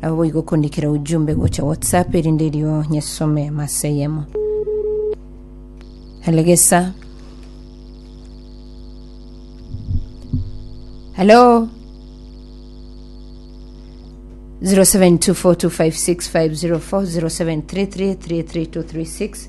Nabo boigo okondikera ujumbe gocha WhatsApp erinde erio nyesome masa eyemo. Elegesa. Hello. 0724256504 0733332236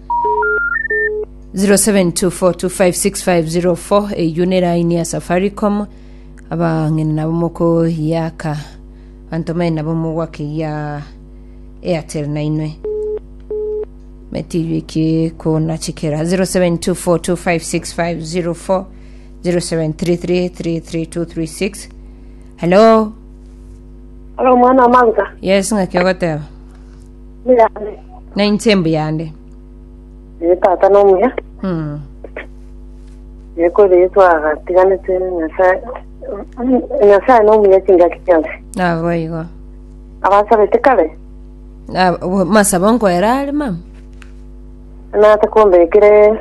0724256504 eyio ne line ya safaricom abang'ina nabo mokoyaka banto bang'ina nabo mogwaka eya airtel nainwe metiyiki kona chikera 0724256504 0733332336 hello Halo mwana manga yes ng'aki ogoteba Muyane. na inche mbuyande Ee, tata nomuya. Mm. Ee, kore Yesu agatiganete Nyasae. Nyasae nomuya chingaki chionsi. nabo igo Abasabete kare, Na- bo- masabo nkoera are mama nata kombekire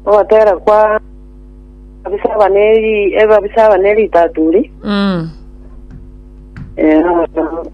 obatera kwa abisaba neri ebabisaba neri taturi. Mm. Ee,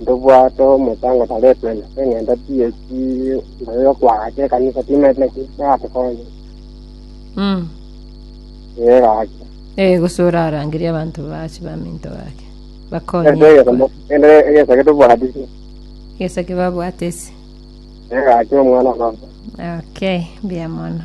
Ntobwate omosango taretwe ase eng'encho TSC naye yokoagacha ekanisa timaeti naki natokonye. Mm. Ee gaki. Eh, gose orarangerie abanto bache baminto gake. Bakonye. Ere egesomo ere egesa getobwatisi. Gesa kebabwate ase. Ee gaki omwana onoso. Okay, mbuya mono.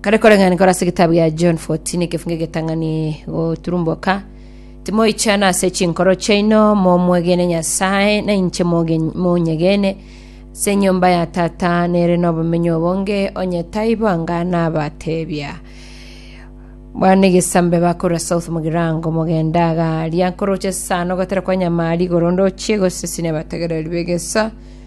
Kare koreng'ana nkore ase egetabu gia John 14 ekefungo egetang'ani goturumboka, Timoichana ase chinkoro chiaino, momwegene Nyasae, na inche moge- monyegene. Ase enyomba ya Tata nere nobomenyo obonge, onye taibo anga nabateebia. Bwana egesambe bakora south mogirango mogenda agaria nkoroche sana ogotera kwa nyama rigoro ndochie gose sine abategereri begeso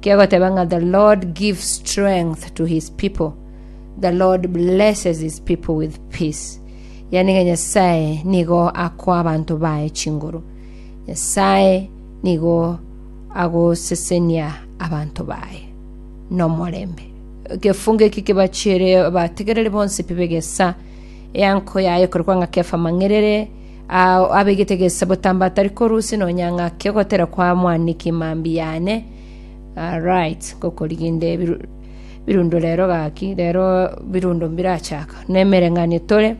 Kegoteba ng'a the Lord gives strength to his people. The Lord blesses his people with peace. Yani ng'a Nyasae nigo akoa abanto baye chinguru. Nyasae nigo agosesenia abanto baye nomorembe. Ekefungo eki kebachere abategereri bonsi pi begesa eanko yaye korokwa ng'a Kefa Mang'erere Ao abegete gesabotambo atari korusia nonya ng'ake ogotera kwa mwaniki mambia yane. Ah, right, ngokoriginde biru- birundo rero gaki, rero birundo mbirachaka. Nemereng'anio tore,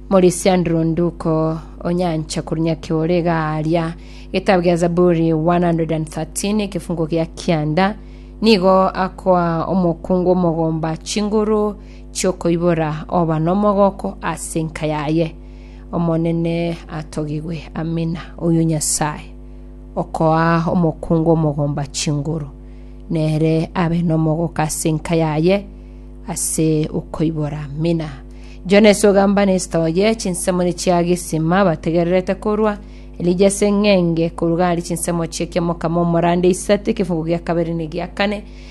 Morisiandro nduko onyancha korwa nyaki ore iga aria. Getabu gia Zaburi 113 ekefungo gia kianda, nigo akoa omokungu omogomba chinguru chiokoibora oba nomogooko ase enka yaye. Omonene atogigwe, Amina. Oyo Nyasae okoa omokungu omogomba chinguru, nere abe nomogoka ase enka yaye ase okoibora. Amina. Jona ase ogamba nesita oye, chinsemo nichia gisima bategererete korwa. Elija ase eng'enge koruga aria chinsemo chie kiamokama omorande isatu, ekefugo gia kabere ne gia kane.